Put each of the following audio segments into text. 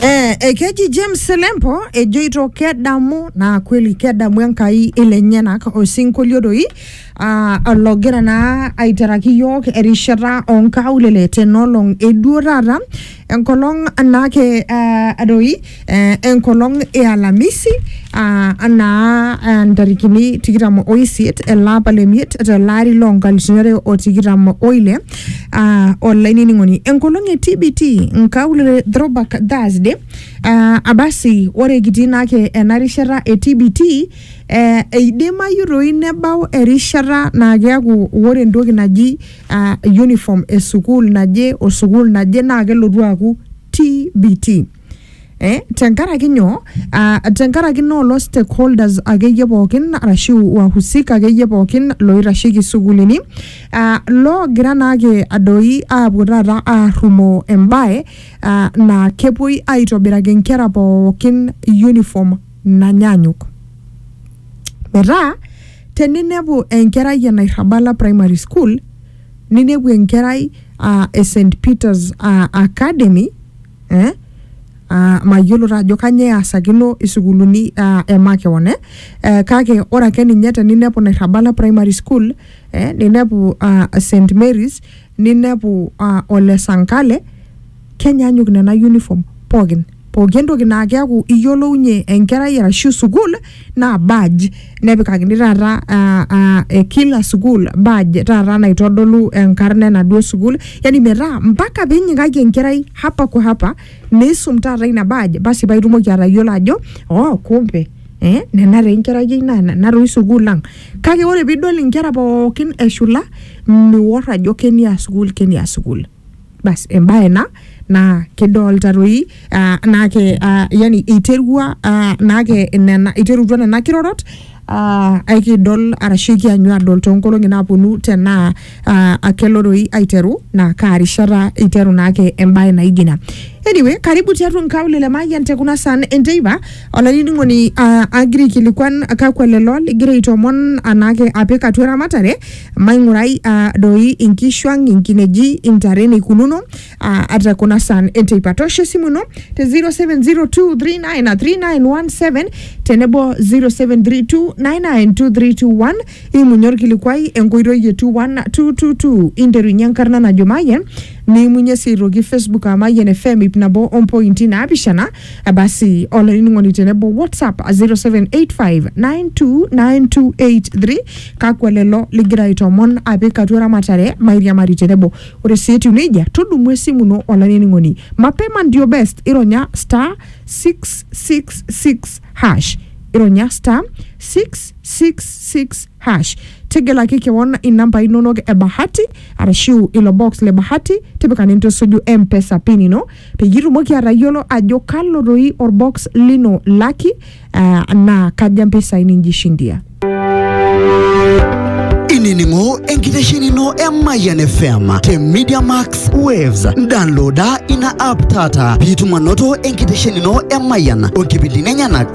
Eh, ekeji James Selempo ejoito kedamu naa kweli kedamu Enkai ilenyenak osinkolio doi ah, ologira naa aiteraki yiok erishata onkaulele tenolong eduo taata enkolong naake ah, doi eh, enkolong e alamisi ah, anaa ah, ntarikini tikitam oisiet elapa lemiet telaari loo nkalifuni are o tikitam oile ah, olainining'oni enkolong e tbt nkaulele throwback thursday ah, abasi ore kitii naake ena rishata e tbt eh, eidimayu toi nebau erishata naa keaku ore entoki naji ah, uniform e sukuul naje o sukuul naje naa kelotu aaku tbt Eh, tenkaraki nyoo ah, tenkaraki naa olo stakeholders akeyie pookin arashu wahusika akeyie pookin loitasheki sukuulini ah, loogira naake adoi aapuo taata aarrumoo embae ah, naa kepuoi aitobiraki nkera pookin uniform nanyaanyuk metaa teninepu enkerai e Nairrabala primary school ninepu enkerai uh, e St Peters uh, Academy eh? Uh, mayiolo taa ajo kanyoo easakino isukuuluni uh, e makeon eh? uh, kake ore ake ninye teninepu nairrabala primary school eh? ninepu uh, st marys ninepu uh, ole sankale kenyaanyuk nena uniform pookin pooki entoki naa keeku iyiolounye enkerai arashu sukuul naa badge nepikakini taata ah, ah, eh, kila sukuul badge taata naitodolu enkarna enaduo sukuul yani metaa mpaka pinyikaki enkerai hapa kwa hapa niisum taata ina badge basi paitumoki atayiolo ajo oh kumbe Eh, nena taa enkerai ai naa nena toi sukuul ang kake ore piidol inkera pookin eshula miwor ajo kenia sukuul kenia sukuul bas embae ena naa kidolta toi ah, naake ah, yani iterua ah, naake nena iterutua nena kirorot ah, aikidol arashu ikianyu adol toonkolong'i naaponu tenaa ah, kelo toi aiteru naa kaa rishata iteru naake embae naijo ina anyway karibu tiatua nkaulele mayian te kuna saan enteipa olainining'oni ah, agira aikilikuan kakwa lelo ligira aitomon anaake apik atua eramatare Maing'urai aa doi inkishu ang, inkineji, intare eneikununo aa ata kuna saan enteipa. Toosho esimu ino te 0702393917 tenebo 0732992321 imunye olkilikuai enkoitoi e 21222 interunye enkarna najo Mayian niimunye sii aitoki Facebook aa Mayian FM ip nabo ompointi naapishana basi olainining'oni tenebo whatsapp 0785929283 kakwa lelo ligira aitomon apik atua eramatare mairiamari tenebo ore sii etiu nejia tudumu esimu ino olainining'oni mapema ndio best ironya star 666 hash ironya star 666 hash tegelaki kewon inambai inonok e bahati arashu ilo box le bahati tipika nintusuju mpesa pin ino peyie itumoki atayiolo ajo kalo doi orbox lino laki uh, naa kaja mpisai ninjishindia inining'o enkitesheni ino e Mayian FM te Media Max Waves. Downloada ina app taata piitum anoto enkitesheni ino e Mayian o nkipindini enyenak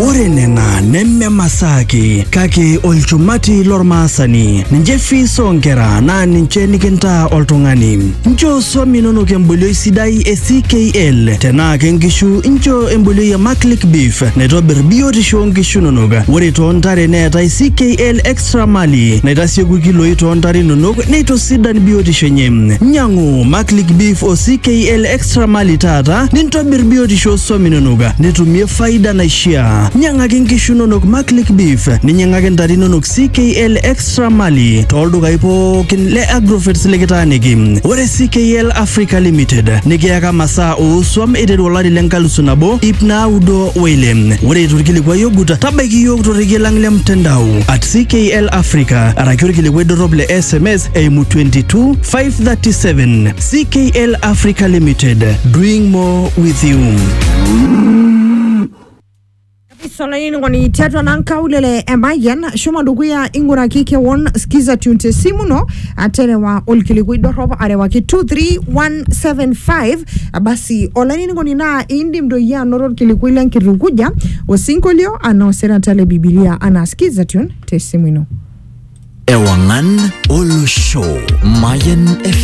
Ore nena neme masaa ake kake olchumati lormaasani. Ninche fees oonkera naa ninche nikintaa oltung'ani. Nchoo swam inonok embolioi sidai e CKL. Tenaa ke nkishu nchoo embolioi e Maclick Beef naitobir biotisho oonkishu inonok. Ore too ntare neetae CKL Extra Mali naitasieku ilkiloi too ntare inonok neitosidan biotisho enye. Nyang'u Maclick Beef o CKL Extra Sramali taata nintobir biotisho oo swam inonok nitumie faida naishiaa. Nyang'aki nkishu inonok Maclick Beef, ninyang'aki ntare inonok CKL Extra Mali tooldukai pookin le Agrovets likitaaniki. Ore CKL Africa Limited nikiyaka masaa oo swam eiteru olari le nkalusu nabo ip naudo o ile. Ore eitu ilkilikuai ogut, tabaiki iyiook torrekie lang le mtandao at CKL Africa araki olkilikuai dorrop le sms eimu 22537 CKL Africa Limited, doing more with you. isolaini ngoni tiatua nankaulele emayian shomo dukuya ing'uraki kewon skiza tune te simu ino aterewa olkilikui dorrop arewaki 23175 basi olainining'oni naa indim doi anoto olkilikui lenkitukuja osinkolio anaa osirata le bibilia anaa skiza tune te simu ino Ewangan Olo Show, Mayan FM.